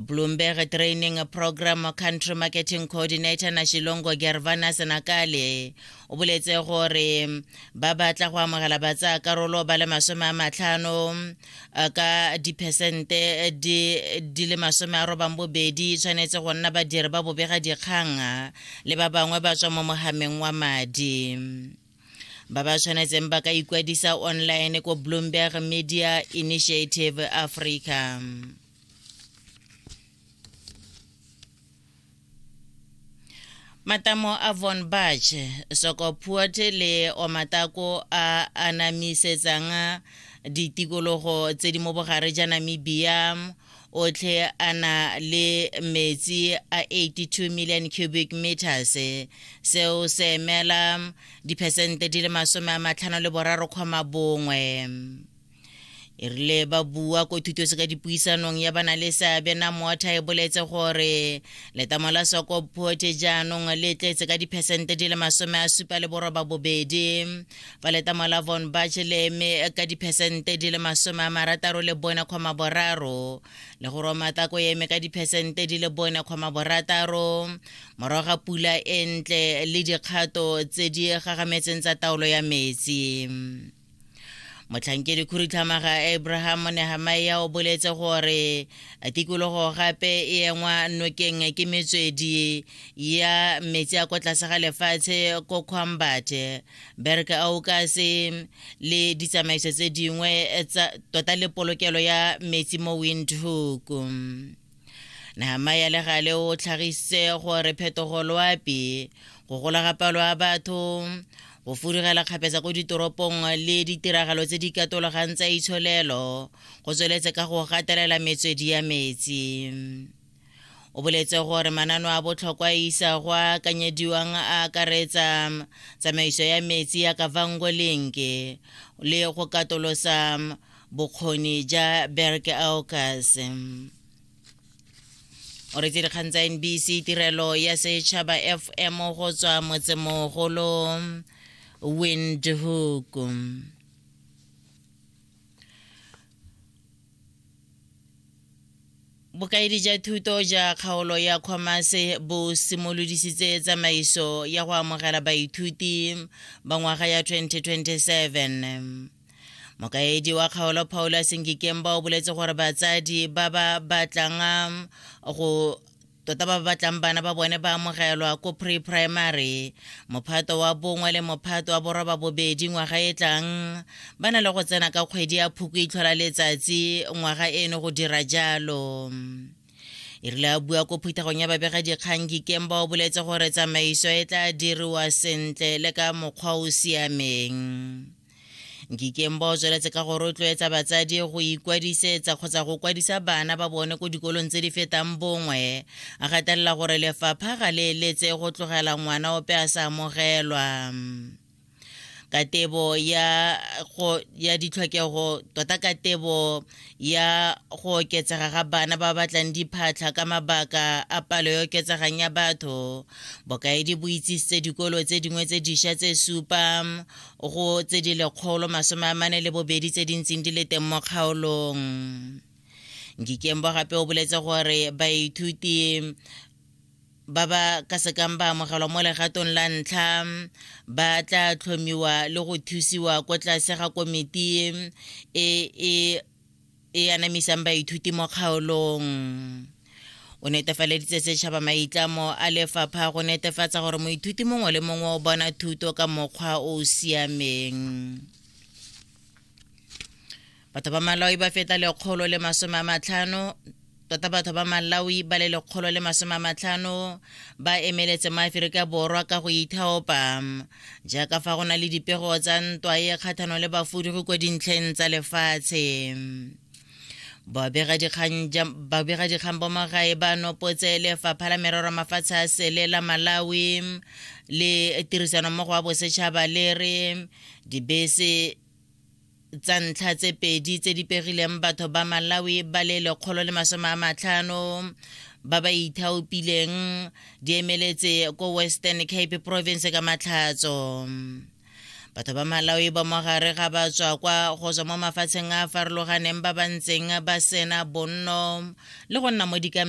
Bloomberg Training Program Country Marketing Coordinator na Shilongo Gervana Senakale o boletse gore ba batla go amogela batsa karolo ba le masome a matlhano eh, ka diphesente di le masome a robang bobedi tshwanetse go nna badiri ba bobega dikgang le ba bangwe ba tswa mo mogameng wa madi ba ba tshwanetseng ba ka ikwadisa online ko bloomberg media initiative africa matamo a von bach sokopuot le omatako a anamisetsang ditikologo tse di mo bogare ja namibia otlhe a na le metsi a 82 million cubic meters seo se emela diphesente di le masome a matlhano le boraro kgoma bongwe e rile ba bua ko thutose ka dipuisanong ya bana le seabe na moatha e boletse gore letamo la soko phote jaanong le tletse ka diphesente di le masome a supa le boroba bobedi fa letamo la von bach le eme ka diphesente di le masome a marataro le bone kgoma boraro le go romatako e eme ka diphesente di le bone kgoma borataro morago ga pula e ntle le dikgato tse di gagametseng tsa taolo ya metsi motlhankedi khurutlhamaga abraham nehamaia o boletse gore tikologo gape e engwa nokeng ke metswedi ya metsi a ko tlase ga lefatshe ko khwambate berk aukase le ditsamaiso tse dingwe tota le polokelo ya metsi mo windhoek Nehemia le gale o tlhagisitse gore phetogo loapi go gola ga palo ya batho go furugela kgapetsa ko ditoropong le ditiragalo tse di katologang tsa itsholelo go tsweletse ka go gatelela metswedi ya metsi o boletse gore manano a botlhokwa a isa go a akanyediwang a akaretsa tsamaiso ya metsi ya kavango lenke le go katolosa bokgoni ja berke aokase o re dikgang tsa nbc tirelo ya setšhaba fm go tswa motsemogolo windhoek bokaedi ja thuto ja kgaolo ya commerce bo simolodisitse tsamaiso ya go amogela baithuti ba ngwaga ya 2027 mokaedi wa kgaolo paulus ngikemba o boletse gore batsadi ba ba batlang um, go tota ba batlang bana ba bone ba amogelwa ko pre-primary mophato wa bongwe le mophato wa boroba bobedi ngwaga e tlang ba na le go tsena ka kgwedi ya phuko itlhola letsatsi ngwaga eno go dira jalo e rile a bua ko phuthegong ya babega dikgang kikemba o boletse gore tsamaiso e tla diriwa sentle le ka mokgwa o siameng nkikeng ba o tsweletse ka go rotloetsa batsadi go ikwadisetsa kgotsa go kwadisa bana ba bone ko dikolong tse di fetang bongwe a gatelela gore lefapha ga le eletse go tlogela ngwana ope a sa amogelwa katebo ya go ya ditlhokego tota katebo ya go oketsega ga bana ba batlang diphatlha ka mabaka a palo e oketsegang ya batho bokaedi bo itsisitse dikolo tse dingwe tse dišwa tse supa go tse di lekgolo masome a mane le bobedi tse di ntseng di le teng mo kgaolong ngikembo gape o boletse gore baithuti ba ba ka sekang ba amogelwa mo legatong la ntlha ba tla tlhomiwa le go thusiwa ko tlase ga komiti e e e anamisang baithuti mo kgaolong o netefaleditse setšhaba maitlamo a lefapha go netefatsa gore moithuti mongwe le mongwe o bona thuto ka mokgwa o o siameng batho ba maloi ba feta lekgolo le masome a matlhano tota batho ba malawi ba le lekgolo le masome a matlhano ba emeletse maaferika borwa ka go ithaopa jaaka fa go na le dipego tsa ntwa e kgathano le bafudugi kwa dintlheng tsa lefatshe babegadikgang ba magae ba nopotse lefapha la merero mafatshe a sele la malawi le tirisanommogo wa bosetšhaba le re dibese tsa ntlha tse pedi tse di pegileng batho ba malawi ba le lekgolo le masome a matlhano ba ba ithaopileng di emeletse ko western cape province ka matlhatso batho ba malawi ba mogare ga ba tswa kwa go tswa mo mafatsheng a a farologaneng ba ba ntseng ba sena bonno le go nna mo dikampeng